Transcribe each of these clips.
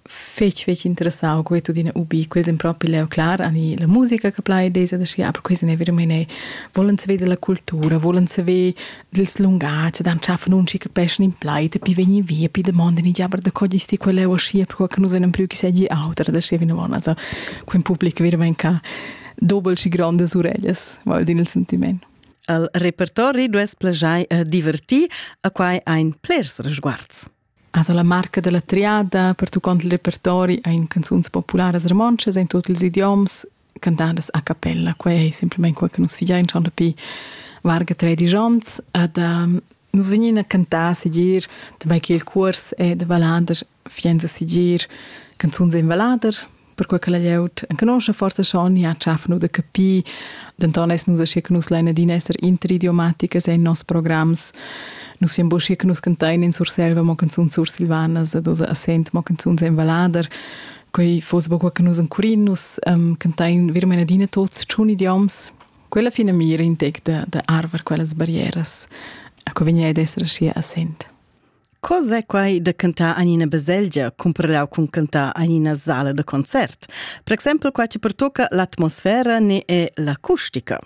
fetg fetg interessau quei tudina ubi quels in propi leu clar ani la musica che plai desa da schi aber questi ne vero meine vollen se vede la cultura vollen se ve dils lungats dann schaffen uns che peschen in pleite pi vegni via pi de mondi ni aber da cogli sti quelle o schi per che nus non più che seggi auter da schi vino von also quin public vero ven ca dobel și grandes ureglias val din il sentiment al repertori dues plajai a diverti a quai ein plers resguards Asa la marca dalla triada pertuccont il repertori ein canzuns popularas romontschas in tut ils idioms cantadas a cappella. Quei ei semplamein quei che nus figein schon dapi varga tredici onns. Ed um, nus vegnin a cantar sigir, damai che il cuors è da vallader, fienza sigir canzuns in vallader, perquei che la glieud enconusce forse schon ja schaffen oder capì denton es nus aschi che nus lein adina esser interidiomaticas in nos programs nus siam buschi che nus cantain in Surselva mo canzun sursilvanas ad osa a sent mo canzuns en valader quei fos buca che nus encurin nus um, cantain vir meine adina tots tschun idioms quella fina mira intec da, da arver quellas barrieras a co vegni ad esser aschi a sent Co s'è quai da cantar en ina baselgia cumprenau cun cantar en ina sala da concert? Per exempel qua che pertocca l'atmosfera ne è l'acustica.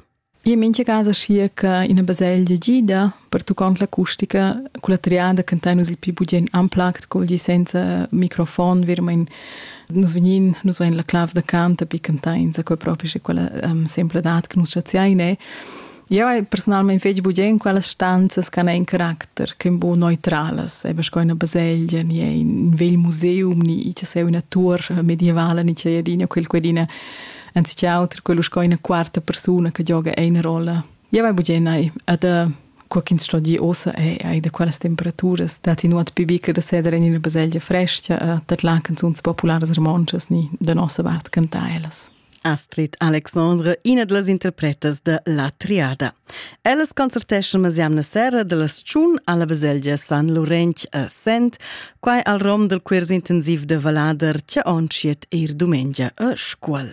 E in mincha casa schia che ina baselgia gida pertuccont l'acustica con la triada cantai nus il pli bugien amplagt col gi senza microfon vermein nus vegnin nus vein la clav da cant a pi cantai in sa quei propi sche quella um, sempladat che nus chaziai ne Eu hai persunalmaing fich bugen in quellas stanzas ch'han ein caracter ch'en bu neutralas, eba sco ina baselgia, ni ein vegl museum, ni che sei üna tuor medievala, ni che adina quel quedina anziché auter quello sco ina quarta persuna che gioga eine rolla. Eu hai bugen hai ad co ch'ins sto dir ossa è ai da quellas temperaturas dat in nuot pibica da seder in ina baselgia fresca, dat la canzuns popularas romontschas ni da nossa vart cantà ellas. Astrid Alexandre, ina da las interpretas da La Triada. Ellas concerteschan las jamna sera da las tschun alla baselgia San Laurenç a Sent, quai al rom del quirs intensiv de Valader, che ontschiet eir dumengia a Scuol.